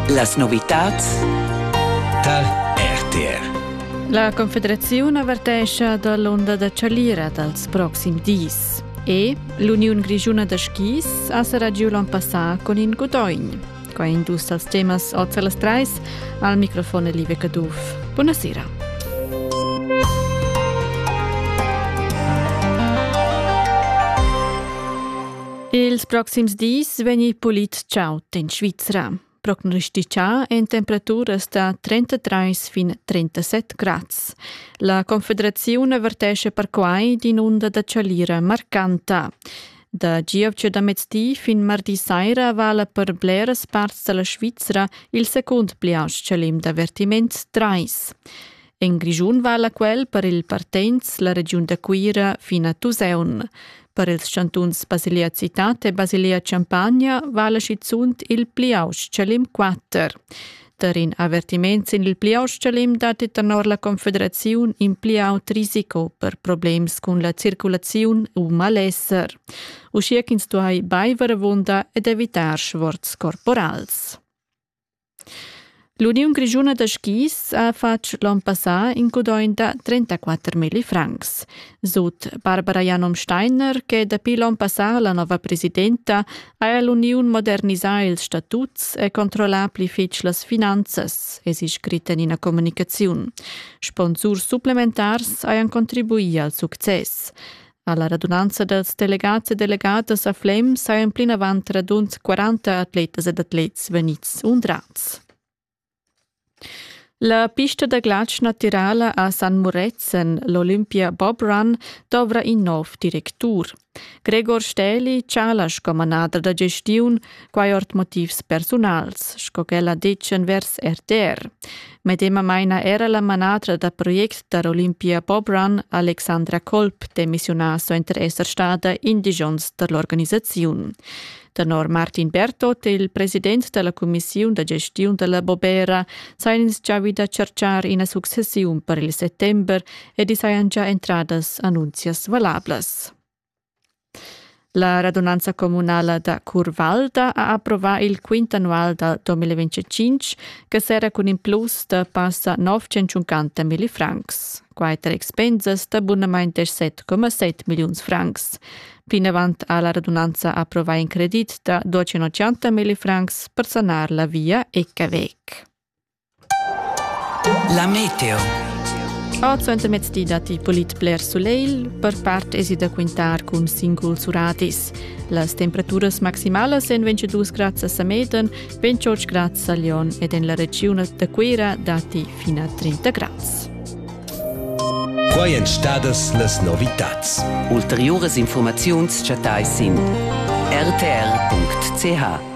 Las novitads tar RTR. La Confederaziun avertescha da l'onda da chalira dals proxims dis. E l'Uniun Grischuna da skis ha serrà giu l'on passà con in Gudogn. Qua indus als temas oz las trais al microfon Live Caduff. Buonasera. Ils proxims dis vegni pulit chaud in Svizra. Prognostitschà en temperaturas da 33 fin 37 grads. La Confederaziun avertesce perquai d'in'unda da chalira marcanta. Da gievgia da mezdi fin mardi saira vala per bleras parts da la Svizra il secund pli aust chalim d'avertiment 3. En Grischun vala quel per il partenz la regiun da Cuira fin a Tusaun. Per ils chantuns Basilea Citate e Basilea Champagna vala schizunt il Pliausch-Chalim 4. Tar in avertiment sin il Pliausch-Chalim datti tenor la Confederaziun in pli aut risiko per problems cun la circulaziun u malesser, uschia ch'ins duai baiver avunda ed evitar sforz corporals. L'Uniun grischuna da skis ha fatg l'on passà in gudogn da 34.000 francs. Sut Barbara Janom Steiner, che dapi l'on passà la nova presidenta, ha l'uniun modernisà ils statuts e controllà pli fitg las finanzas, è si scrit en ina communicaziun. Sponsurs supplementars hajan contribuì al success. Alla radunanza dals delegats e delegatas a Flem sajan plinavant radund 40 atletas ed atlets vegnids undrads. La pista da glatsch natirala a San Muretzen, l'Olympia Bob Run, dovra in nov directur. Gregor Stähli chala sco manader da gestiun, quai ord motivs persunals, sco ch'ella dettia vers RTR. Medemamain ha era la manatra da project da Olympia Bobrun, Alexandra Kolb, demissiunà suenter esser stada in di onns da l'organisaziun. Tenor Martin Bertot, il president della Commissiun da gestiun della Bobera, sajan ins già da cercar ina successiun per il settember ed sajan già entradas annunzias valablas. La radunanza communala da Curvalda ha approvà il quint annual da 2025 che serra cun in plus da passa 950 milli francs. Quai tar expensas da bunamain 17,7 milliuns francs. Plinavant ha la radunanza approvà in credit da 280 milli francs per sanar la via Ecavec. La meteo. Ord suentermezdi datti polit bler sulegl, per part èsi da quintar cun singuls uradis. Las temperaturas maximalas èn 22 grads a Sameden, 28 grads a Lyon ed en la regiun da Cuira datti fin a 30 grads. Quai èn stadas las novitads. Ulteriuras informaziuns chattais sin rtr.ch.